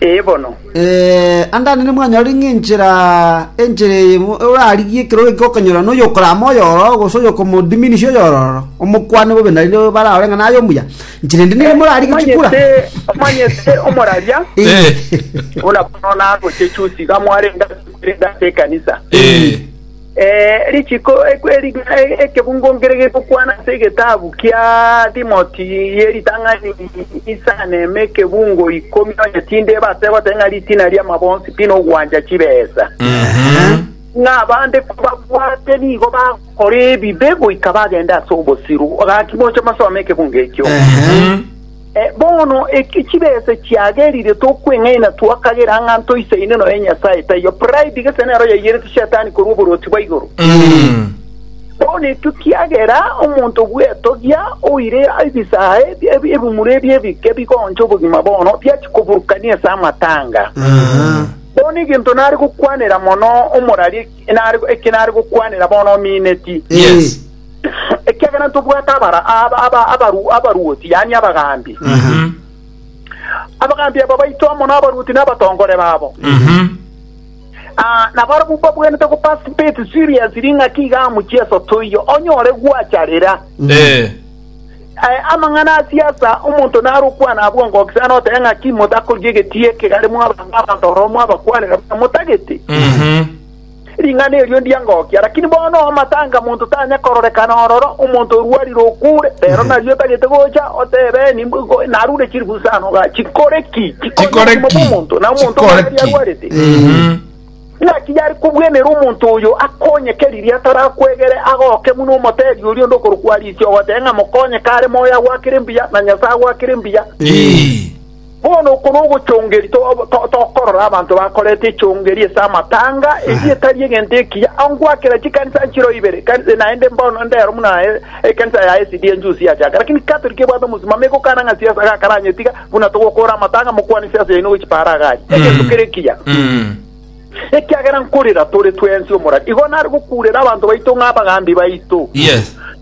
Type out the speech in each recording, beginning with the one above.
Ee bono. Anga nere mwanyorire ng'a enchera enchera eye orarigie ekerogo ekio okonyora noyo okorama oyororo gose oyokomodiminisia oyororo, omokwane bobe na rirobe bare arore ng'a naye omuya. Inchera ende nere morarigie chikura. Omanyete, omanyete omoraria Eh. buna bono nagochechusi iga mwarenge ase ekanisa. Eh. Richiko ekebungo nkere gegokwana ase egetabu kia Timoti ye ritang'ani inse aneme ekebungo ikomi onye tinde ebase goteba ng'a ritina ri'amabonsi pi nogwancha chibesa. Ng'a abande kobabwate nigo bagokora ebibe goika bagende ase obosiru. Gaki moche mosome ekebungo ekio. Bono eki chibese chiagerire tokweng'aina twakagera ng'a ntoisaine noyo Nyasae taiyo. Pride gese nero yaiyereti Shetani korwa oborwoti bwa igoro. Bono ekio kiagera omonto bw'etogia oire ebisaha ebi- ebi- ebimura ebi ebike bigoncha obogima bono biachia koburukania ase amatanga. Bono egento nare gokwanera mono omorari eki nare eki nare gokwanera bono omineti. Yes. ekiagera ntobwate abara- aba- aba- abaru- abaruoti, yaani abagaambi. Abagaambi aba baito amo nabaruoti na abatongore babo. Ah, nabarabwo mbabwenerete go participate seriously ng'aki iga amo Jesu toiyo onyore gwacharera. Eh. Eh, amang'ana a siasa omonto naro okwana abwo ngokisa note ng'aki motakoria egetie ekegare mwabanga abanto oromo abakwanera motagete. Ring'ana erio ndiangokia, lakini bono omatanga monto tanya kororekana ororo omonto orwarire okure, rero nario otagete gocha otebe nimbo go- narure chilifu isano ga chikore ki chikore Chikore obogima ki? bw'omonto na omonto Chikore omwaberi ki? arwarete Mhm. naki yari kobwenera omonto oyo akonyeke riria atarakwegere agoke muno omotebi oria onde okorokwa Alicia ogoteba ng'a mokonye kare moyo agwakire mbuya na Nyasae agwakire mbuya Ii. Bono oko nogochongeria to- tokorora abanto bakorete echongeria ase amatanga, eria etari egento ekiya, ongoakera chikanisa nchiro ibere, ekanisa naende mbono ndero buna aye ekanisa ya SDA njusi yachaka, lakini Catholic ebwate omosimamo egokana ng'a siasa gakaranyetiga, buna togokora amatanga mokwane siasa yaino gochi para iga aria. Egento kere ekiya. Ekiagera nkorera tore twensi omorari. Igo nare gokurera abanto baito ng'a abagambi baito. Yes.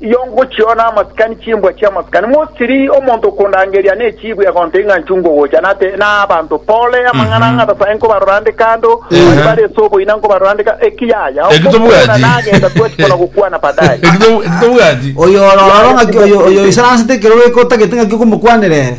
Iyo ngochiona amasikani chimbwa chi'amasikani, mosiri omonto okondangeria nechibwe agontebia ng'a nchunga ogocha, nate nabanto pore amang'ana a Nyasaye nkobarora nde kando, baria bare ase oboina nkobarora nde kando, eki yaya okokwana nagenda kwaki kona gokwana baadaye. Oyo ororo ng'aki oyo oisaransete ekero ogoika otagete ng'aki okomokwanera ere.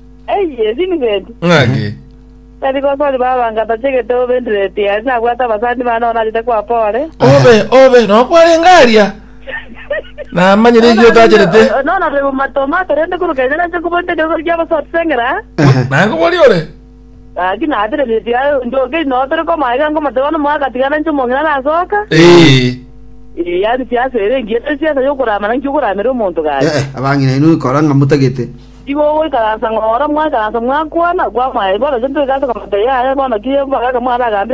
Eye, Vincent. Ng'ake. Tari gosori baba nga tachegete obe ndireti aye nabwate abasani bane bono nachete kwapa ore. Obe, obe, no kwarenge aria. Namanyire eki otacherete. Nono tari bomato mato rende kuru kenya nache nkobwate egesosi kia abasore sengera. Nango bori ore. Gaki natire ndireti aye njoke ino tore koma iga nkomate bono moyo agatigana inche omong'ina nasoka. Ee. Ee, yani siasa ere engiya tari siasa yokoramana nki okoramera omonto gaki. Eh, eh, abang'ina inwe ikora ng'a motagete. Igo ogoikaransa ng'oro, mwakaransa mwakwana, kwamanya, bono intwe toigase komotegia aye, bono ki mboraga mwaragambire?